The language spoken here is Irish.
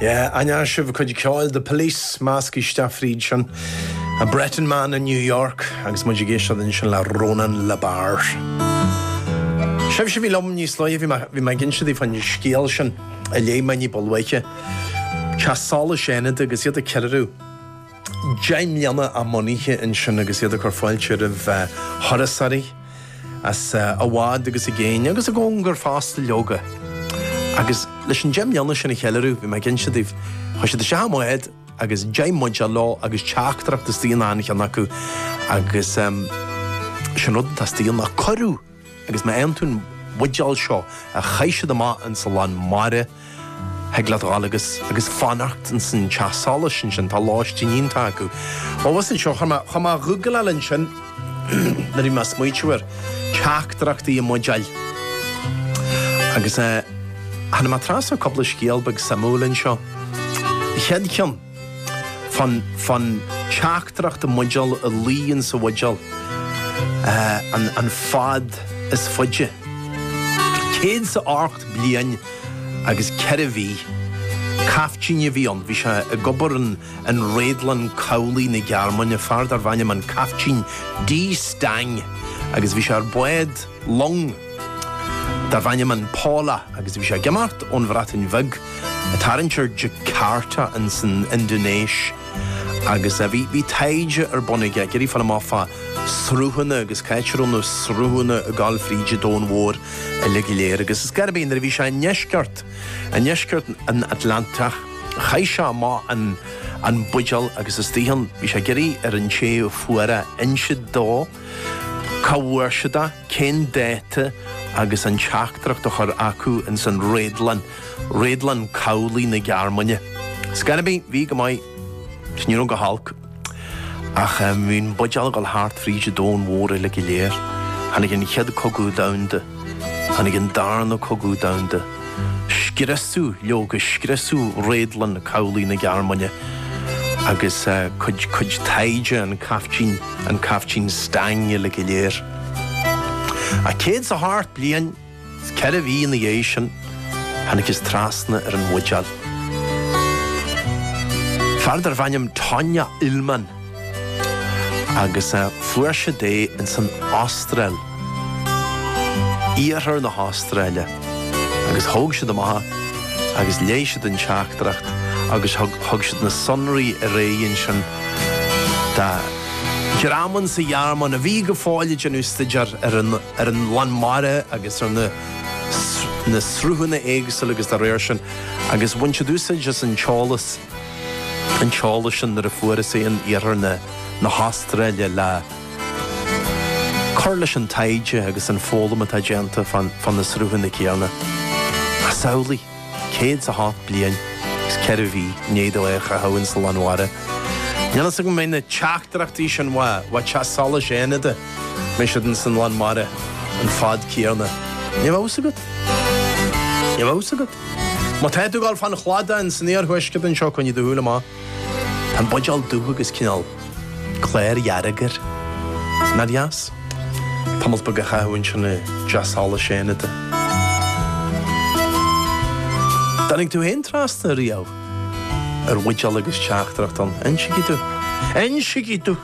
Yeah, aithneoidh sibh a cuid ceoil The Police, measctha isteach fríd sin. A Breton Man in New York agus muid ag éisteacht ansin le Ronan Le Bars. Sibhse a bhí liom níos luaithe, bhí mé- bhí mé ag insint daoibh fán scéal sin a léigh mé ní ba luaithe. Teach Solais Fhánada agus iad ag ceiliúradh. deich mbliana a mbunaithe ansin agus iad ag cur fáilte roimh thurasóirí as i bhfad agus i gcéin agus i gcóngar fosta, leoga. Agus leis an deich mbliana sin a cheiliúradh, bhí mé ag insint daoibh, chuaigh siad isteach i mbád agus deich mbuidéal leo agus teachtaireacht istigh in achan cheann acu agus is é an rud atá istigh ann ná cuireadh. agus má fhaigheann tú an bhuidéal seo a chaith siad amach ins an lán mara, thig leat a dhul agus agus fanacht ins an teach solais ansin, tá lóistín iontach acu. Abhus anseo, chuaigh mé chuaigh mé a ghoogláil ansin nuair a bhí mé ag smaoitiú ar teachtaireachtaí i mbuidéil. Agus eh tháinig mé trasna ar cúpla scéal beag suimiúil anseo. An chéad cheann. fán teachtaireacht i mbuidéal a luigh ins an bhuidéal an fad is faide. Céad is a hocht bliain agus ceithre mhí. Caiftín a bhí ann. Bhí sé ag obair in an Réadlann Cabhlaigh na Gearmáine, fear darbh ainm an Caiftín D. Stang agus bhí sé ar bád long. Darb ainm an Paula agus bhí sé ag imeacht ón Bhreatain Bheag. Tarraingt ar Jakarta ins an Indinéis agus eh bhí bhí taighde ar bun aige, ag iarraidh fáil amach fá sruthanna agus cá háit a raibh na sruthanna ag goil fríd an domhan mhór uilig go léir agus ar scor ar bith nuair a bhí sé i ndeisceart i ndeisceart an Atlantach chaith sé amach an an buidéal agus istigh ann. Bhí sé ag iarraidh ar an té a fuair é insint dó. Cá bhfuair siad é? Cén dáta? agus an teachtaireacht a chur chucu ins an réadlann, réadlann cabhlaigh na Gearmáine. Ar scor ar bith, bhí go maith, is ní raibh go holc. Ach um, bhí'n buidéal ag goil thart fríd an domhan mhór uilig go léir. Tháinig an chéad cogadh domhanda. Tháinig an Darna Cogadh Domhanda, scriosadh, leoga, scriosadh Réadlann Cabhlaigh na Gearmáine agus cuid, cuid taighde an Caiftín, an Caiftín Stang uilig go léir. Ach céad is a hocht bliain is ceithre mhí ina dhiaidh sin, thángthas trasna ar an bhuidéal. Fear darbh ainm Tonya Illman. agus fuair siad é ins an Astráil, iarthar na hAstráile, agus thóg siad amach agus léigh siad an teachtaireacht agus thug siad na sonraí ar aghaidh ansin do dhream insa Ghearmáin a bhí go fóill ag déanamh staidéar ar an lán mara agus ar na sruthanna éagsúla agus dá réir sin agus bhain siad úsáid as an t-eolas. an t-eolas sin nuair a fuarthas é in iarthar na na hAstráile le cur leis an taighde agus an foghlaim atá déanta fán fá na sruthanna céanna. Ach samhlaigh, céad 's a hocht bliain 's ceithre mhí i ndiaidh dó é a chaitheamh ins an lán mara, níl 'fhios agam an mbeidh na teachtaireachtaí sin uaidh uaidh Teach Solais Fhánada, an mbeidh siad ins an lán mara an fad céanna. Níl 'fhios agat. Níl 'fhios agat. Má tá tú ag dul fán chladach insan iarthuaisceart anseo, coinnigh do shúil amach. Tá an buidéal dubh agus cineál clár dhearg air. Nár dheas tamalt beag a chaitheamh ansin i dTeach Solais Fhánada. Dtáinig tú féin trasna ariamh ar bhuidéal agus teachtaireacht ann. Insígí domh. Insígí domh.